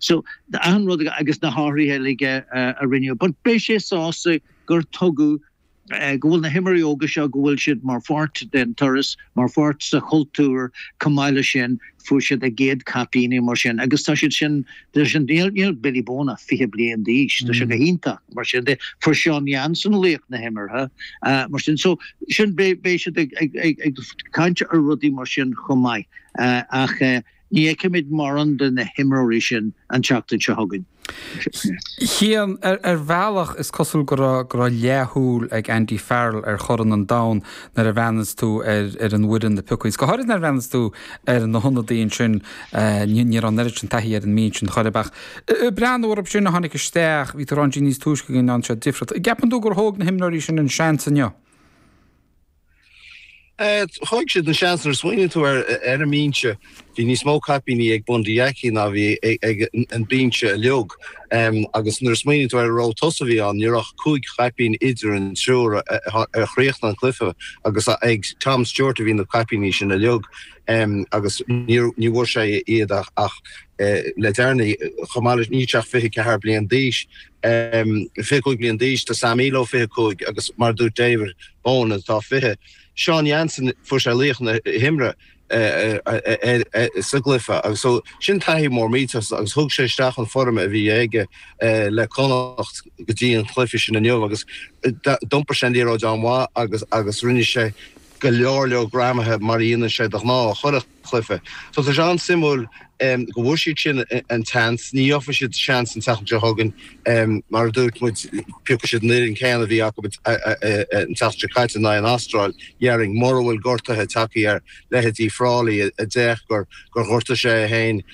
So achan rud agus na hathruithe uilig a rinneadh, but beidh sé sásta gur tugadh go bhfuil na himreoirí óga seo go bhfuil siad mar pháirt den turas, mar pháirt sa chultúr, chomh maith leis sin fuair siad a gcéad chaipíní mar sin agus tá siad sin, tá sin, níl Billy Bohan ach fiche bliain d'aois, tá sé go hiontach mar sin de, fuair Seán Jansen laoch na himeartha mar sin so sin beidh siad ag caint ar rudaí mar sin chomh maith ach Ní fheicfimid mórán de na himreoirí sin an tseachtain seo chugainn. Chian, Ar bhealach is cosúil go raibh leathshúil ag Andy Farrell ar Chorn an Domhain nuair a bhreathnaíos tú ar an bhfoireann a piocadh, agus go háirid nuair a bhreathnaíos tú ar na hionadaithe ansin. Ní raibh an oiread sin taithí ar an mbinse sin chor ar bith ach breathnú orthu sin a tháinig isteach, bhí tú a rá ansin níos túisce go ndearna siad difríocht. An gceapann tú gur thóg na himreoirí sin an seans inniu? Thóg siad an seans nuair a smaoiníonn tú ar an mbinse. Bhí níos mó caipíní ag Bundee Aki ná a bhí ag an binse uilig agus nuair a smaoiníonn tú ar an ró tosaigh a bhí ann, ní raibh ach cúig chaipín idir an triúr a chríochnaigh an cluiche agus ag Tom Stewart a bhí na caipíní sin uilig agus ní bhfuair sé iad ach le deireanaí. Chomh maith leis, níl sé ach 24 bliain d'aois. 25 bliain d'aois, tá Sam Illo 25 agus mar a dúirt David Bohan atá 20. Seán Jansen, fuair sé laoch na himeartha sa gcluiche agus so sin taithí mór millteach agus thug sé isteach an foirm a bhí aige le Connacht go dtí an cluiche sin inniu agus d'iompair sé an liathróid an-mhaith agus rinne sé go leor leor greamuithe mar a dhéanann sé de ghnáth. chluife. So tá sé an-suimiúil go bhfuair siad sin an tseans. Ní gheobhaidh siad seans an tseachtain seo chugainn. Mar a dúirt muid, piocfaidh siad an fhoireann céanna a bhí acu an tseachtain seo caite in aghaidh an Astráil déarfainn, mura bhfuil gortuithe ag teacht ar leithéidí Frawley a d'fhéach gur ghortaigh sé é féin.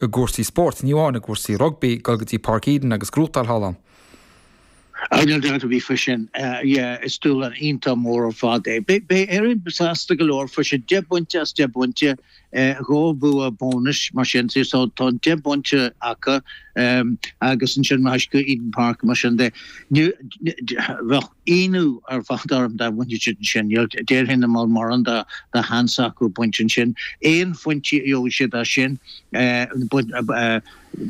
I gcúrsaí spóirt, ní amháin i gcúrsaí rugbaí, dul go dtí Páirc Eden agus gnóthachtáil thall ann. Níl dabht ar bith faoi sin. Yeah, is dúshlán iontach mór ar fad é. Beidh Éirinn sásta go leor faoi sin. Deich bpointe as deich bpointe, dhá bhua bónais, mar sin de. So tá an deich bpointe acu agus ansin rachaidh siad go Eden Park, mar sin de. Bheadh. ionadh ar fad orm dá mbainfeadh siad ansin. Déarfainn nach bhfuil mórán de sheans acu baint ansin, aon phointí a gheobhaidh siad as sin,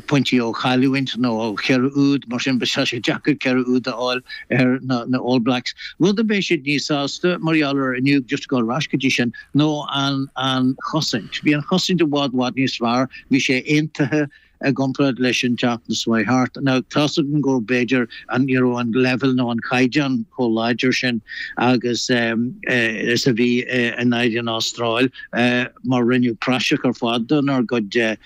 pointí ó chailliúint nó ó cheithre úd, mar sin, beidh sé deacair ceithre úd a fháil ar na All Blacks. Rud a mbeidh siad níos sásta mar gheall air inniu, just ag gabháil ar ais go dtí sin, ná an chosaint. Bhí an chosaint i bhfad, bhfad níos fearr, bhí sé aontaithe, i gcomparáid leis an tseachtain seo chuaigh thart. Ná tá's agam go mb'fhéidir an ní raibh an leibhéal nó an caighdeán chomh láidir sin agus is a bhí in éadan an Astráil, mar rinneadh praiseach ar fad donár gcuid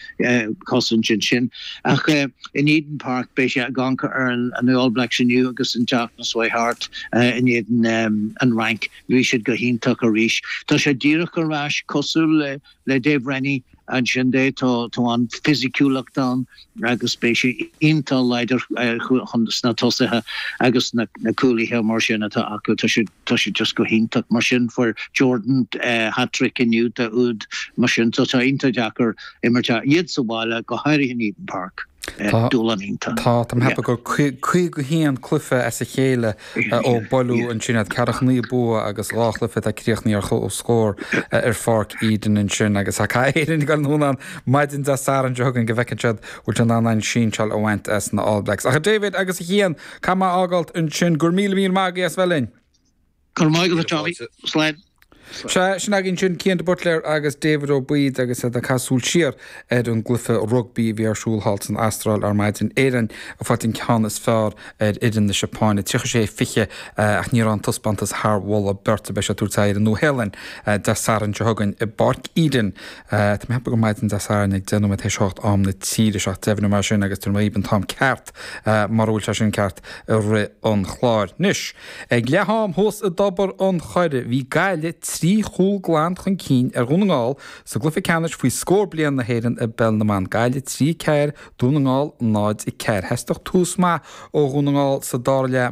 cosaint ansin. Ach in Eden Park beidh sé ag amharc ar na All Blacks inniu agus an tseachtain seo chuaigh thart in éadan an Fhrainc, bhí siad go hiontach arís. Tá sé díreach ar ais, cosúil le Dave Rennie, Ansin de, tá an fisiciúlacht ann agus beidh sé iontach láidir chun, sna tosaithe agus na cúlaithe mar sin atá acu, tá siad just go hiontach. Mar sin, fuair Jordan hat-trick inniu de úd, mar sin tá sé iontach deacair imirt a iad sa bhaile, go háirithe in Eden Park. Tá, tá, tá mé ag ceapadh gur 51 cluiche as a chéile Ó buaileadh ansin iad ceathracha naoi bua agus dhá chluiche atá críochnaithe ar chomhscór ar Pháirc Eden ansin agus tá caithfidh Éirinn a dhul anonn ann maidin Dé Sathairn seo chugainn go bhfeiceann siad bhfuil siad in ann aon sinseáil a bhaint as na All Blacks. Ach a David agus a Chian, caithfidh mé é a fhágáilt ansin, gura míle míle maith agaibh as bheith linn. Go raibh maith agat a Johnny. Slán. Sea, sin againn ansin Cian de Buitléar agus David Ó Baoid agus iad ag caitheamh súil siar ar an gcluiche rugbaí a bhí ar siúl thall san Astráil ar maidin. Éirinn ag fáilt an ceann is fearr ar fhoireann na Seapáine, 36, 20, ach ní raibh an taispeántas thar mholadh beirte. Beidh siad ag tabhairt aghaidh ar an Nua-Shéalainn Dé Sathairn seo chugainn i bPáirc Eden. Tá mé ag ceapadh gur maidin Dé Sathairn ag deich nóiméad tar éis a hocht am na tíre seo, ach deimhneoidh mé sin agus tabharfaidh mé daoibh an t-am ceart. Mura bhfuil sé sin ceart i rith an chláir. Anois, ag leath-am thuas i dTobar an Choire, bhí Gaillimh trí chúl glan chun cinn ar Dhún na nGall sa gcluiche ceannais faoi scór bliain na hÉireann i bPeil na mBan, Gaillimh 3, 4, Dún na nGall 0, 4. Theastaigh tús maith ó Dhún na nGall sa dara leath.